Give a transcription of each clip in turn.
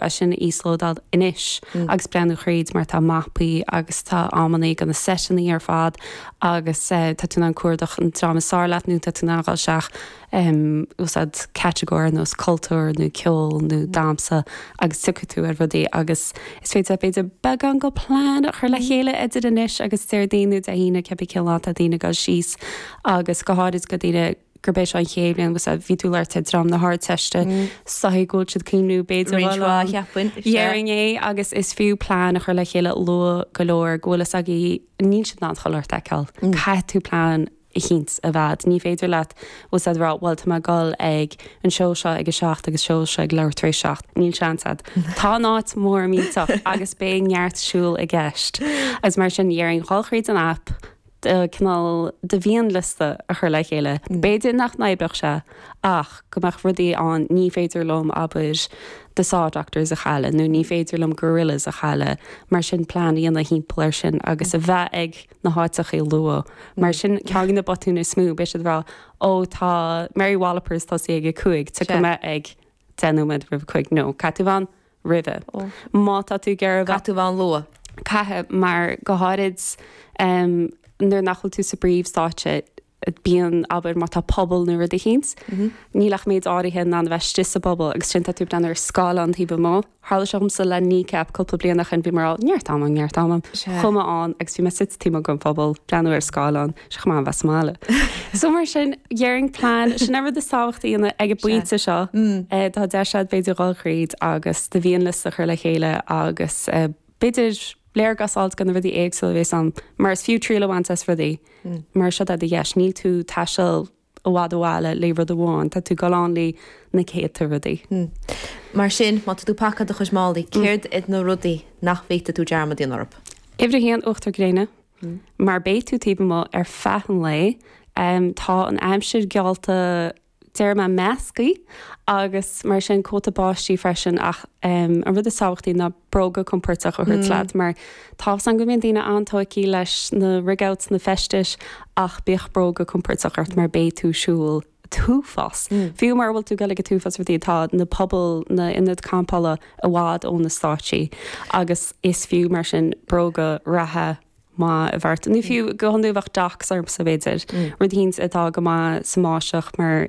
é sin a íoslódáil anois agus breathnú thríd mar tá mapaí agus tá amannaí go na seiteannaí ar fad agus tá tú in ann cuardach an dream is fearr leat nó tá tú in ann dul isteach úsáid catagóir ar nós cultúr nó ceol nó damsa agus tiocfaidh tú ar rudaí agus is féidir b'fhéidir beagán go plean a chur le chéile idir anois agus Déardaoin nó Dé hAoine cibé cén lá atá daoine ag dul síos agus go háirid go daoine gurb é seo an chéad bhliain agus bhí tú ag labhairt ar dream na hArdteiste, is dóichí go bhfuil siad ag cuimhniú b'fhéidir roinnt mhaith a cheapfainn déarfainn é agus is fiú plean a chur le chéile luath go leor go bhfuil a fhios agaibh níl siad in ann chuile shórt a fheiceáil. Caithfidh tú plean eicínt a bheith a'd. Ní féidir leat just a rá bhuel tá mé ag dul ag an seó seo ag a seacht agus seó seo ag leathuair tar éis a seacht. Níl seans a'd. Tá an áit mór millteach agus beidh neart siúl i gceist. Agus mar sin déarfainn dhul thríd an aip, cineál de mhianliosta a chur le chéile. B'fhéidir nach n-oibreodh sé, ach go mbeadh rudaí ann, ní féidir liom, abair, the Saw Doctors a chailleadh, nó ní féidir liom Gorillaz a chailleadh, mar sin plean a dhéanamh thimpeall air sin agus a bheith ag na háiteacha luath. Mar sin, ceann de na botúin is mó, beidh siad ag rá, ó tá Mary Wallopers ag tosaí ag a cúig, tiocfaidh mé ag deich nóiméad roimh a cúig, no caithfidh tú bheith ann roimhe. Má tá tú ag iarraidh a bheith, caithfidh tú a bheith ann luath. Caithfidh, mar go háirid nuair nach bhfuil tú sa bpríomhstáitse, bíonn, abair, má tá puball nó rud eicínt, níl ach méid áirithe in ann a bheith istigh sa bpuball agus ansin tá tú ag breathnú ar scáileán taobh amuigh. Tharla seo dhomsa le Kneecap cúpla bliain ó shin, bhí mé ag rá, 'Neart am, neart am, chuaigh mé ann' agus bhí mé taobh amuigh gon phuball, ag breathnú ar scáileán, sé chomh maith dhom bheith sa mbaile. So mar sin, dhéarfainn plan, sin an rud is tábhachtaí ina, ag an bpointe seo. Tá deis a'd b'fhéidir dhul thríd agus do mhianliosta a chur le chéile agus b'fhéidir léargas a fháilt go na rudaí éagsúla a bhéas ann, mar is fiú triail a bhaint as rudaí. Mar seo do dheis, níl tú ag taisteal I bhfad ó bhaile le haghaidh rud amháin, tá tú ag goil ann le haghaidh na céadta rudaí. Mar sin, má tá tú ag pacáil do chuid málaí, céard iad na rudaí nach bhféadfadh tú dearmad a dhéanamh orthu? Uimhir a haon, uachtar gréine. Mar beidh tú taobh amuigh ar feadh an lae, tá an aimsir geallta déarfaidh mé measctha, agus mar sin, cóta báistí freisin, ach an rud is tábhachtaí ná bróga compordach a thabhairt leat, mar Tá a fhios a'm go mbíonn daoine an-tógtha leis na rig-outs, na feistis, ach bíodh bróga compordach ort mar beidh tú ag siúl an t-uafás. Fiú mara bhfuil tú ag goil ag an t-uafás rudaí. Tá na pubaill, na hionaid campála i bhfad ó na stáitsí agus is fiú mar sin bróga reatha maith a bheith ort. Nó fiú go hiondúil bheadh Docs ormsa b'fhéidir, rud eicínt atá go maith sa mbáisteach mar.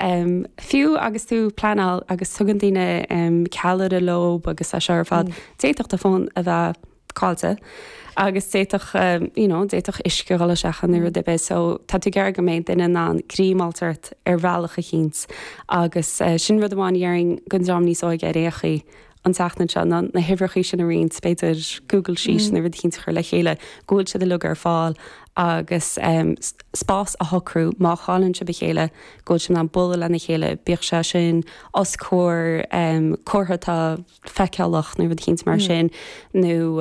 Fiú agus tú ag pleanáil agus tugann daoine ceallraí leo agus é seo ar fad, d'fhéadfadh do fón a bheith caillte agus d'fhéadfadh you know d'fhéadfadh uisce dhul isteach ann nó rud ar bith so tá tú ag iarraidh go mbeidh duine in ann greim a fháilt ort ar bhealach eicínt agus sin rud amháin a dhéarfainn go dream níos óige ar aon chaoi an tseachtain seo ná na huimhreacha sin a roinnt, b'fhéidir Google Sheet nó rud eicínt a chur le chéile go bhfuil siad uilig ar fáil agus spás a shocrú má chailleann sibh a chéile go bhfuil sibh in ann bualadh lena chéile, bíodh sé sin os comhair comhartha atá feiceálach nó rud eicínt mar sin nó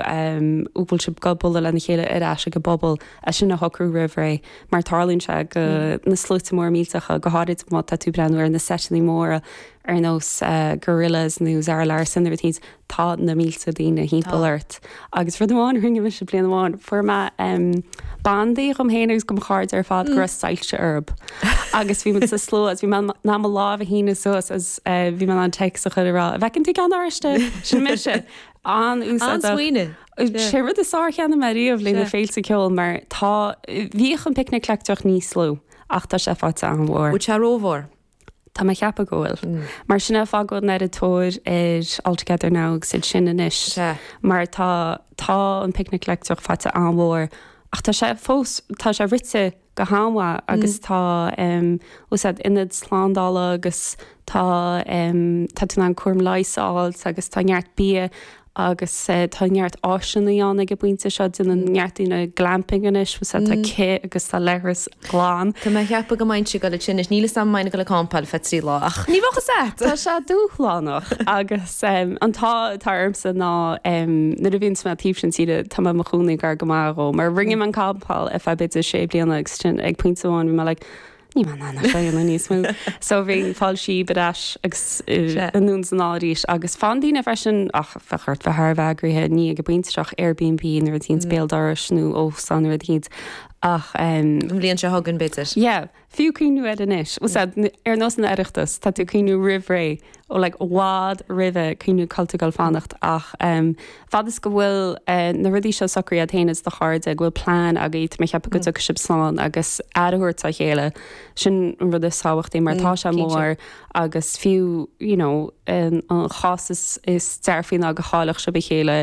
go bhfuil sibh ag bualadh lena chéile ar ais ag an bpuball, é sin a shocrú roimh ré mar tarlaíonn sé go, na sluaite móra millteacha, go háirid má tá tú ag breathnú ar na seiteanna móra. ar nós Gorillaz nó Zara Larsson nó pé bith, tá na mílte daoine thimpeall ort. Agus rud amháin a rinne mise bliain amháin, fuair mé bandaí dhom fhéin agus go mo chairde ar fad go raibh soilse orthub. Agus bhí muid sa slua agus bhí mé in ann mo lámh a shíneadh suas agus bhí mé in ann text a chur ag rá, an bhfeiceann tú ceann oráiste? Sin mise. An-úsáideach. An-smaoineamh. Sé rud is fearr a cheannaigh mé riamh le haghaidh na féilte ceoil mar tá, bhíodh an picnic leictreach níos lú ach tá sé faighte an-mhór. Bhí sé rómhór. Tá mé ag ceapadh go bhfuil. Mar sin é, ag fágáil an iomaitheoir ar All Together Now agus iad sin anois. Sea. Mar tá, tá an Picnic Leictreach faighte an-mhór, ach tá sé fós, tá sé rite go han-mhaith agus tá, you know, ionad slándála agus tá, tá tú in ann cúram leighis a fháilt agus tá neart bia agus tá neart áiseannaí ann ag an bpointe seo, déanann neart daoine glamping anois, tá cith agus tá leithreas glan. Tá mé ag ceapadh go mbeinnse ag dul ansin anois, níl 'fhios a'm an mbeinn ag dul ag campáil feadh trí lá ach ní bheadh a fhios a'd! Tá sé dúshlánach agus an t-ádh atá orm-sa ná nuair a bhíonns mé taobh sin tíre tá mé i mo chónaí gar go maith dhó mar rinne mé an campáil ar feadh b'fhéidir sé bliana agus ansin ag pointe amháin bhí mé like Níl mé in ann é seo a dhéanamh níos mó. So bhínn ag fáil síob ar ais agus anonn san oíche arís. Agus fanann daoine freisin, ach bheadh ort bheith thar a bheith eagraithe, ní ag breathnú isteach ar Airbnb nuair a thíonns béal dorais nó óstán nuair a thíonns. Ach. An bhliain seo chugainn b'fhéidir. Yeah. Fiú cuimhniú air anois. Bhuel sea, ar nós an Oireachtas, tá tú ag cuimhniú roimh ré, ó like i bhfad roimhe, cuimhniú cá bhfuil tú ag goil ag fanacht, ach Fad is go bhfuil na rudaí seo socraithe a't fhéin is do chairde, go bhfuil plean agat, mé ag ceapadh go dtiocfaidh sibh slán agus aire a thabhairt dá chéile, sin an rud is tábhachtaí mar tá sé mór agus fiú you know an cás is is dearfaí ná go gcaillfeadh sibh a chéile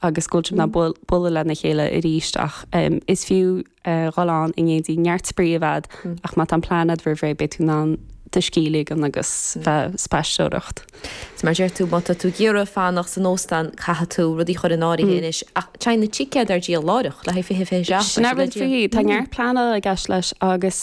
agus go bhfuil sibh in ann bualadh lena chéile arís ach is fiú a dhul ann i n-éindí. Neart spraoi a bheith a'd, ach má tá an plean a'd roimh ré, beidh tú in ann do scíth a ligean agus bheith ag spaisteoireacht. Is mar deir tú, má tá tú ag iarraidh fanacht san óstán, caithfidh tú rudaí chur in áirithe anois, ach téann na ticéid ar díol láithreach, le haghaidh fiche, fiche seacht, Sin é rud faoi, tá neart pleanála i gceist leis, agus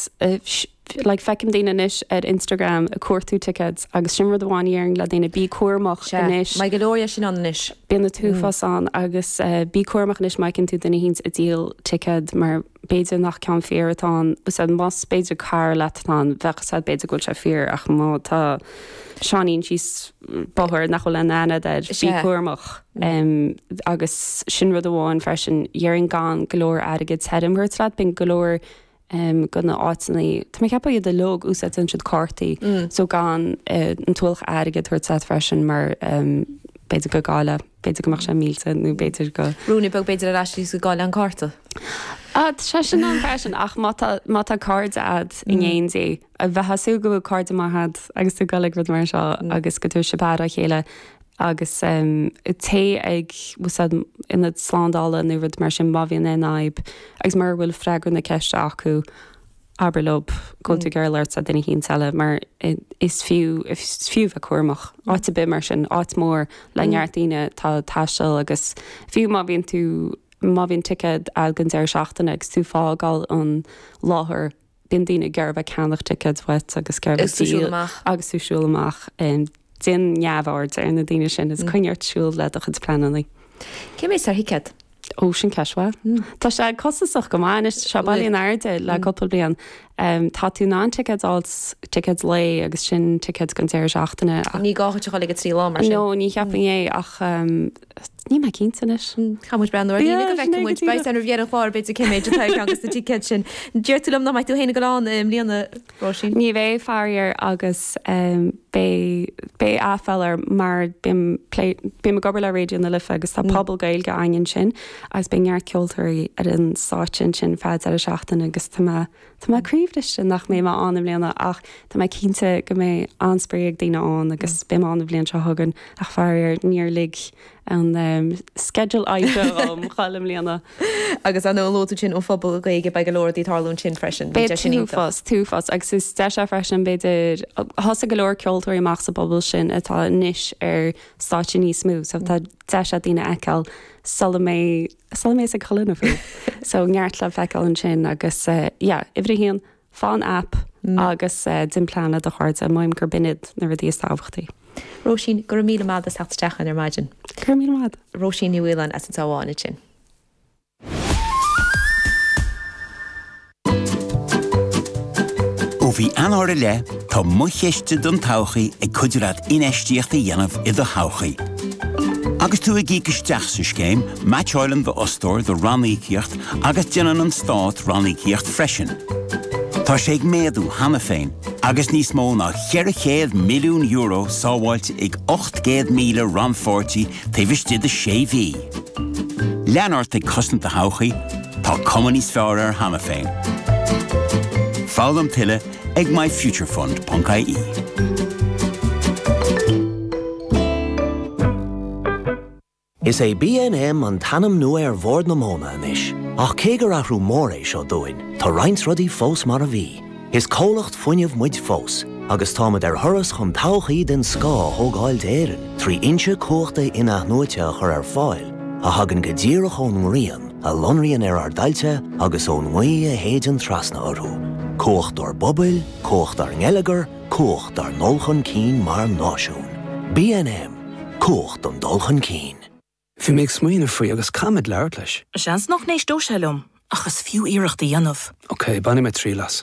like Feicim daoine anois ar Instagram ag cuartú tickets agus sin rud amháin a dhéarfainn le daoine, bí cúramach Sea, anois. maith go leor é sin ann anois. Bíonn na t-uafás ann agus bí cúramach anois má fheiceann tú duine eicínt ag díol ticket mar b'fhéidir nach ceann fíor atá ann. A bhfuil fhios a'd, mar b'fhéidir cara leat atá ann, bheadh a fhios a'd b'fhéidir go bhfuil sé fíor ach má tá Seáinín síos bóthar nach bhfuil aon aithne a'd air, bí Sea. cúramach. Agus sin rud amháin freisin, dhéarfainn gan go leor airgid tirim a thabhairt leat, bíonn go leor de na háiteannaí, tá mé ag ceapadh iad uilig, úsáidteann siad cártaí, so gan an t-ualach airgid a thabhairt leat freisin mar b'fhéidir go gcailleadh, b'fhéidir go mbeadh sé millte nó b'fhéidir go. Rúnaí beag b'fhéidir ar ais is go gcaillfeá an cárta. Sea, sin liom freisin, ach má tá, má tá cairde a'd i ngéin di, a bheith ag súil go bhfuil cairde maith agat agus tú ag dul ag rud mar seo agus go dtabharfaidh sibh aire dá chéile agus téigh ag na slándála nó rud mar sin má bhíonn aon fhadhb agus mura bhfuil freagra na ceiste acu, abair leo go bhfuil tú ag mm. labhairt le duine eicínt eile mar is fiú bheith cúramach. Mm. Áit ar bith mar sin, áit mór le mm. neart daoine tá taisteal agus fiú má bhíonn tú má bhíonn ticéad an deireadh seachtaine agus tú ag fágáil an láthair Bíonn daoine ag iarraidh a bheith ag ceannach ticéad uait agus ag iarraidh díol agus tú ag siúl amach. Déan neamhaird ar na daoine sin, is coinnigh ort ag siúl le do chuid pleananna. Cé mhéad atá ar thicéad? Ó, sin ceist mhaith. Tá sé costasach go maith anois, tá sé bailithe in airde le cúpla bliain. Tá tú in ann ticéad a fháil, ticéad lae agus sin ticéad don deireadh seachtaine. Ní gá duit a dhul ag na trí lá mar sin. No, ní cheapfainn é, ach Níl mé cinnte anois. Caithfidh muid breathnú ar líne go bhfeicfidh muid. Beidh sin againn níos deireanaí ar an gclár b'fhéidir cé mhéad atá ag teacht as na ticéid sin. Deir tú liom nach mbeidh tú féin ag dul ann i mbliana Róisín? Ní bheidh faraor agus beidh aiféala orm mar bím ag obair le Raidió na Life agus tá puball Gaeilge againn ansin agus beidh neart ceoltóirí ar an stáitse ansin feadh an deireadh seachtaine agus tá mé Tá mé croíbhriste nach mbeidh mé ann i mbliana ach tá mé cinnte go mbeidh an-spraoi ag daoine ann agus beidh mé ann an bhliain seo chugainn ach faraor níor lig an sceideal oibre dhom dhul i mbliana. Agus ó luaigh tú ansin Puball na Gaeilge? Beidh go leor rudaí ag tarlú ansin freisin, bíonn sé sin iontach. Beidh, tá a fhios, tá a fhios, agus is deis é freisin b'fhéidir, thosaigh go leor ceoltóirí amach sa bpuball sin atá anois ar stáitse níos mó so tá deis ag daoine iad a fheiceáil sula mbeidh Sula mbeidh ag codladh na faoi. So neart le feiceáil ansin agus yeah uimhir a haon faigh an app agus déan plean le do chairde, measaim gurb in iad na rudaí is tábhachtaí. Róisín, go raibh míle maith agat as teacht isteach againn ar maidin. Go raibh míle maith. Róisín Ní Mhaoláin as an Sabhánaid sin. Ó mhí Eanáir i leith, tá Mo Chiste don Todhchaí ag cuidiú leat infheistíocht a dhéanamh i do thodhchaí. Agus tú ag íoc isteach sa scéim, meaitseálann d'fhostóir do ranníocaíocht agus déanann an Stát ranníocaíocht freisin. Tá sé ag méadú cheana féin, agus níos mó ná €400 milliún sábháilte ag 800,000 rannpháirtí taobh istigh de sé mhí. Lean ort ag cosaint do thodhchaí, tá cuma níos fearr air cheana féin. Foghlaim tuilleadh ag myfuturefund.ie. Is é BNM an t-ainm nua ar Bhord na Móna anois, ach cé gur athrú mór é seo dúinn, tá roinnt rudaí fós mar a bhí. Is comhlacht fuinnimh muid fós, agus táimid ar thuras chun todhchaí den scoth a thógáil d'Éirinn trí fhoinsí cumhachta in-athnuaite a chur ar fáil a thagann go díreach ón ngrian a lonraíonn ar ár dtailte agus ón ngaoth a shéideann trasna orthu, cumhacht dár bpobail, cumhacht dár ngeilleagar, cumhacht dár ndul chun cinn mar náisiún. BNM, Cumhacht don dul chun cinn. Bhí mé ag smaoineamh faoi agus caithfidh mé labhairt leis. Seans nach n-éisteodh sé liom, ach is fiú iarracht a dhéanamh. Ok, bainfidh mé triail as.